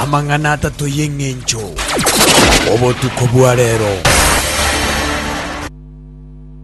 amang'ana atato y'eng'encho obotuko bwa reero.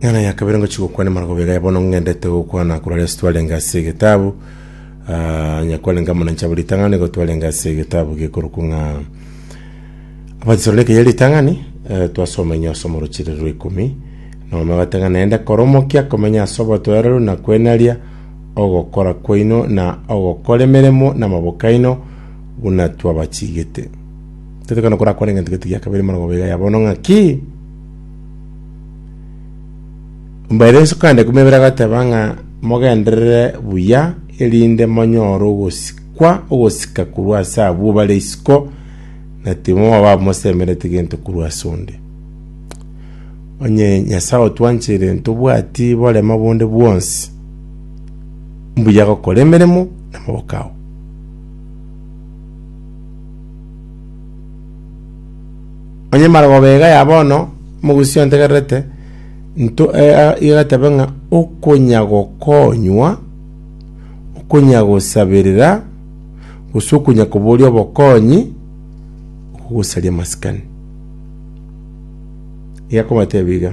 Eng'ana ya kabere ngochia gokwana emaroko bega ya bono ng'endete gokwana korwa ase twarenge ase egetabu ah, nyakwarenge amo na nchabo ritang'ani igo twarenge ase egetabu gekorokwa ng'a abatesalonike ya ritang'ani eh, twasoma inyo ase omorochire rwa ikumi nomama batang'ana naende koromokia komenya ase obotoereru na kwenaria ogokora kwaino na ogokora emeremo namaboko aino buna twabachigete. Tetekana korakora eng'encho gete gia kabere morogobe iga yabono ng'aki? Mbaire nsukande kumebere agateba ng'a mogenderere buya erinde monyore ogosikwa ogosika korwa ase abwo bare isiko na timoba mosemerete gento korwa ase onde. Onye Nyasae otwanchire ntobwati borema bonde bwonsi, mbuya gokora emeremo namaboko ao. Onye marogoba iga ya bono, mogusi ontegererete, nto eh, iga gatebe ng'a okonya gokonywa, okonya gosabirira, gose okonya koboria obokonyi, okogosaria masikani. Egakobatebia iga,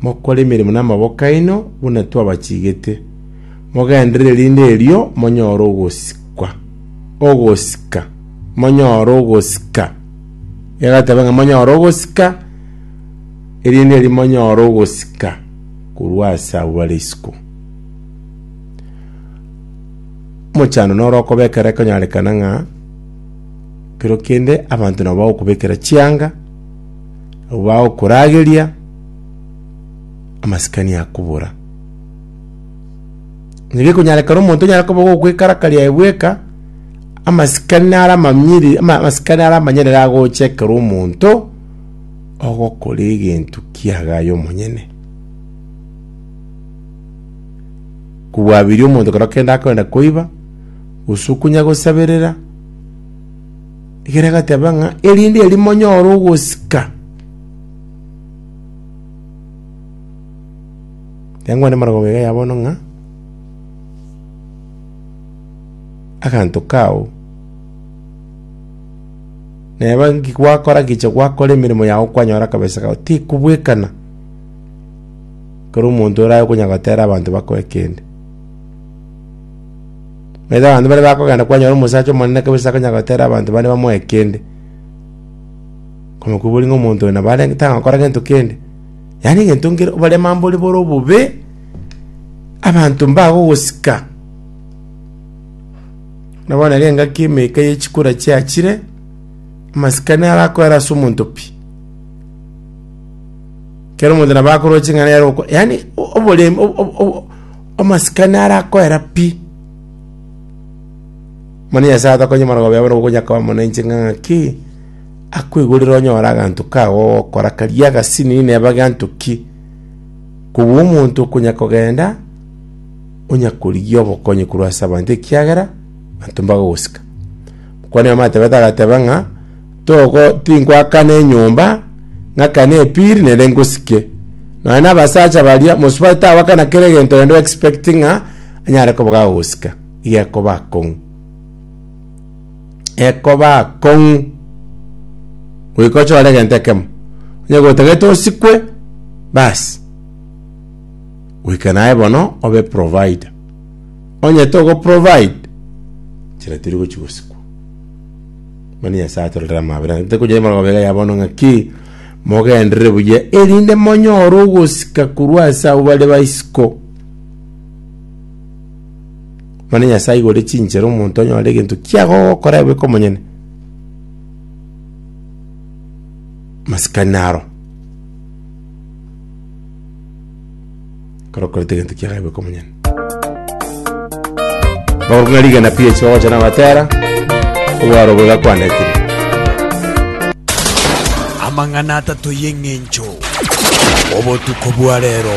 Mokore emeremo namaboko aino buna twabachigete, mogenderere rinde erio monyore ogosikwa, ogosika, monyore ogosika. Egateba ng'a monyore ogosika, erinde erio monyore ogosika korwa ase abwo bare isiko. Omochando noro okobekera ekonyarekana ng'a kero kende abanto nabo bagokobekera chianga Abwo bagokorageria, amasikani akobora. Onye gekonyarekana omonto onyare koba gokwekarakaria aye bweka, amasikani nare amamiri, ama- amasikani nare amanyerere agocha ekero omonto ogokora egento kiaga aye omonyene. Kobwabiria omonto ekero kende akoenda koiba, gose okonya gosaberera. Ekero agateba ng'a, erinde eri monyore ogosika. Yangwana emorogongo eye ya bono ng'a, aganto kao neba nki gwakora gicha gwakora emeremo yago kwanyora akabesa kao tikobwekana kero omonto orabe konya gotera abanto bakoe kende. Naende abanto baria bakogenda kwanyora omosacha omonene kabisa akonyara gotera abanto bande bamoe kende, komokuboria ng'a omonto oyo nabo arenge tagokora gento kende. Yaani egento nkere bare amambore bore obobe, abanto mbagogosika. Buna bono ere engaki emeka ye chikura chiachire, amasikani arakoera ase omonto pi. Kera omonto nabo akoroche ng'a nere oko yaani o- oborem- o- o- o- Omosikani arakoera pi, mani Nyasae atokonye marogoba yabo na ogokonya koba mono inche ng'a ng'aki akoigorera onyore aganto kago ogokora karia agasini neba ganto ki, kobua omonto okonya kogenda onya korigia obokonyi korwa ase abanto ekiagera abanto mbagogosika. Okwania Amatebete agateba ng'a, Togo tinkwakana enyomba, ng'akane epiri, nere ngosike. Nonya na abasacha baria, mosubati tagwakana kera egento rende o expect ng'a anyare koba gagosika. Iga ekoba akong'u. Ekoba akong'u. Goika ochore egento ekemo. Onye gotagete osikwe, bas. Goika naye bono obe provider. onye togo provide chira tiri gochi gosikwa mani nyasaye atororera amabera nte kunya imara gobega ya bono ng'a ki mogenderere buya erinde monyore ogosika korwa ase abo bare baisiko mani nyasaye igore chinchera omonto onyore egento kiago ogokora ebe komonyene masikani naro Ekero okorete egento kiagae goika omonyene. Bagoruka ng'a rigena PH bagocha nabatera, obwaro obo gakwanetire. Amang'ana atato y'eng'encho. Obotuko bwa rero.